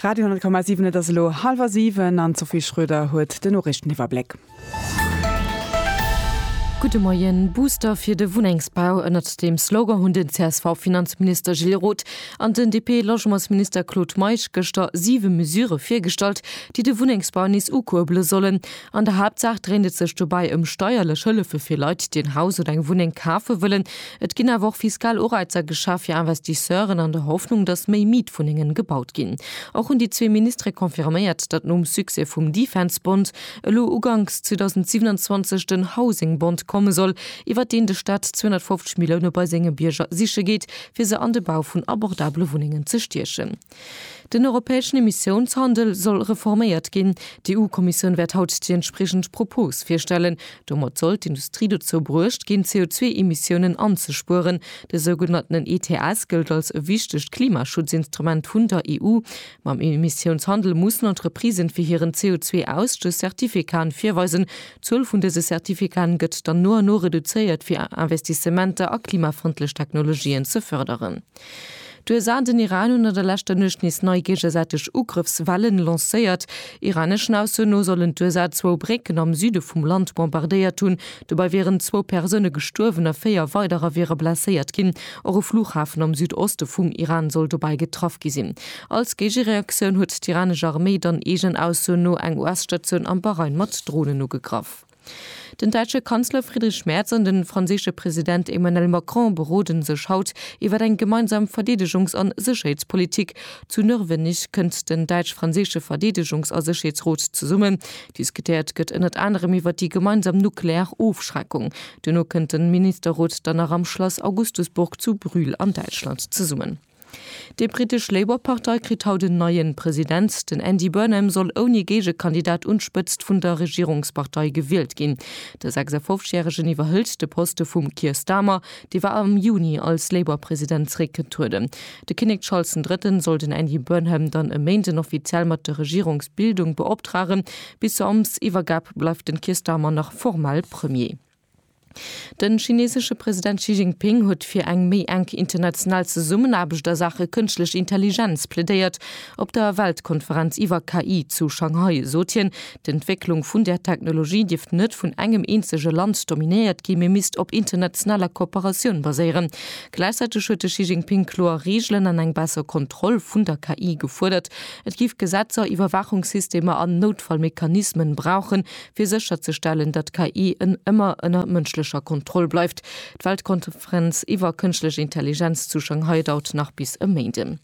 Radio 10,7 Et ass elo hallwer siwen an d'Sophie Schröder huet den Noriichteniwwerbléck. Gudde Moien, Booster fir de Wunnengsbau, ënnert deem Slogan hunn den CSV-Finanzminister Gilles Roth an den DP-Logementsminister Claude Meisch gëschter siwe Mesurë virgestallt, déi de Wunnengsbau nees ukuerbele sollen. An der Haaptsaach dréint et sech dobäi ëm steierlech Hëllefe fir Leit, déi en Haus oder eng Wunneng kafe wëllen. Et ginn awer och fiskal Ureizer geschaf fir Investisseuren an der Hoffnung, datt méi Mietwunnengen gebaut ginn. Och hunn déi zwee Ministere confirméiert, datt nom Succès vum Defense-Bond elo uganks 2027 den Housing-Bond komme soll, iwwert deen de Staat 250 Millioune bei senge Bierger siche geet, fir se an de Bau vun abordabele Wunnengen ze stiechen. Den europäeschen Emissiounshandel soll reforméiert ginn. D'EU-Kommissioun wäert haut déi entspriechend Propos virstellen. Domat soll d'Industrie dozou bruecht ginn, d'CO2-Emissiounen anzespueren. De sougenanntenen ETS gëllt als e wichtegt Klimaschutzinstrument vun der EU. Mam Emissiounshandel mussen Entreprisen fir hiren CO2-Ausstöss Certificaten virweisen. D'Zuel vun dëse Certificaten gëtt dann no an no reduzéiert, fir Investissementer a klimafrëndlech Technologien ze fërderen. D'USA an den Iran hunn an der leschter Nuecht nees nei géigesäiteg Ugrëffswellen lancéiert. Iraneschen Aussoen no sollen d'USA zwou Brécken am Süde vum Land bombardéiert hunn. Dobei wieren zwou Persoune gestuerwen a véier weiderer wiere blesséiert ginn. Och e Flughafen am Südoste vum Iran soll dobei getraff gi sinn. Als Géigereaktioun huet d'iranesch Arméi dann eegen Aussoen no eng US-Statioun am Bahrain mat Dronen ugegraff. Den däitsche Kanzler Friedrich Merz an de franséische President Emmanuel Macron berode sech haut iwwer eng gemeinsam Verdeedegungs a Sécherheetspolitik. Zu Nörvenich kënnt den däitsch-franséische Verdeedegungs a Sécherheetsrot zesummen. Diskutéiert gëtt ënnert anerem iwwer déi gemeinsam nuklear Ofschreckung. Duerno kënnt de Ministerrot dann nach am Schlass Augustusburg zu Brühl an Däitschland zesummen. Déi brittesch Labour-Partei kritt haut en neien President. Den Andy Burnham soll ouni Géigekandidat un d'Spëtzt vun der Regierungspartei gewielt ginn. De 56 Järegen iwwerhëlt de Poste vum Keir Starmer, dee war am Juni als Labour-President zréckgetrueden. De Kinnek Charles den Drëtten soll den Andy Burnham dann e Méinden offiziell mat der Regierungsbildung beoptragen. Bis zur Amtsiwwergab bleift den Keir Starmer nach formal Premier. Den chinesesche President Xi Jinping huet fir eng méi enk international Zesummenaarbecht a Saache Kënschtlech Intelligenz plädéiert. Op der Weltkonferenz iwwer KI zu Shanghai sot hien, d'Entwécklung vun där Technologie dierft net vun engem eenzege Land dominéiert gi mee misst op internationaler Kooperatioun baséieren. Gläichzäiteg huet de Xi Jinping kloer Reegelen an eng besser Kontroll vun der KI gefuerdert. Et géif Gesetzer, Iwwerwaachungssystemer an Noutfallmechanismen brauchen, fir sécherzestellen, datt d'KI en ëmmer ënner mënschlecher Kontroll bleift, d'Weltkonferenz iwwer kënschtlech Intelligenz zu Shanghai daurt nach bis e Méinden.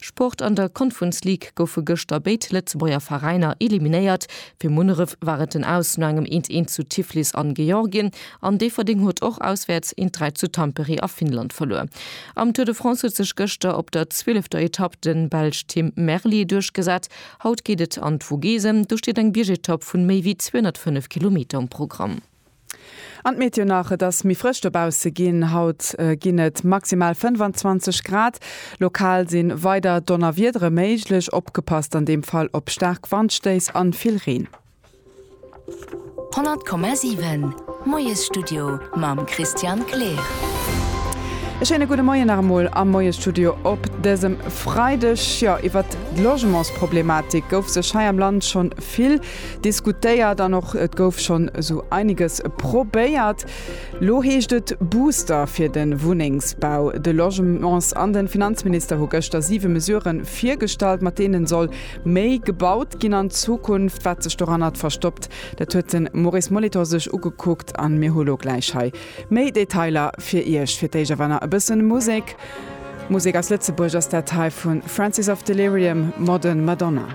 Sport, An der Conference League goufe gëschter béid Lëtzebuerger Veräiner eliminéiert. Fir Munneref war et den Aus no engem eent eent zu Tiflis an Georgien an Déifferdeng huet och auswäerts eent dräi zu Tampere a Finnland verluer. Am Tour de France huet sech gëschter op der zwielefter Etapp den Belsch Tim Merlier duerchgesat. Haut geet et an d'Vogese, do steet eng Biergetapp vun méi wéi 205 Kilometer um Programm. An d'Meteo nach, Et ass méi frësch dobausse ginn. Haut ginn et maximal 25 Grad. Lokal si weider Donnerwiedere méiglech, opgepasst an deem Fall op staark Wandstéiss an vill Reen. 100,7 Moiesstudio mam Christian Kleer. E schéine gudde Moien nach emol am Moiestudio op dësem Freideg. Jo, iwwert d'Logementsproblematik gouf sech hei am Land scho vill diskutéiert an och et gouf schonn esou einiges probéiert. Lo heescht et Booster fir de Wunnengsbau, de Logements an de Finanzminister hu gëschter siwe Mesurë virgestallt, mat deene soll Méi gebaut ginn an Zukunft. Wat sech doranner verstoppt, dat huet de Maurice Molitor sech ugekuckt an mir hu lo gläich hei méi Detailer fir Iech. Fir d'éischt awer nach e bësse Musek. Musek aus Lëtzebuerg ass dat hei vu Francis of Delirium, Modern Madonna.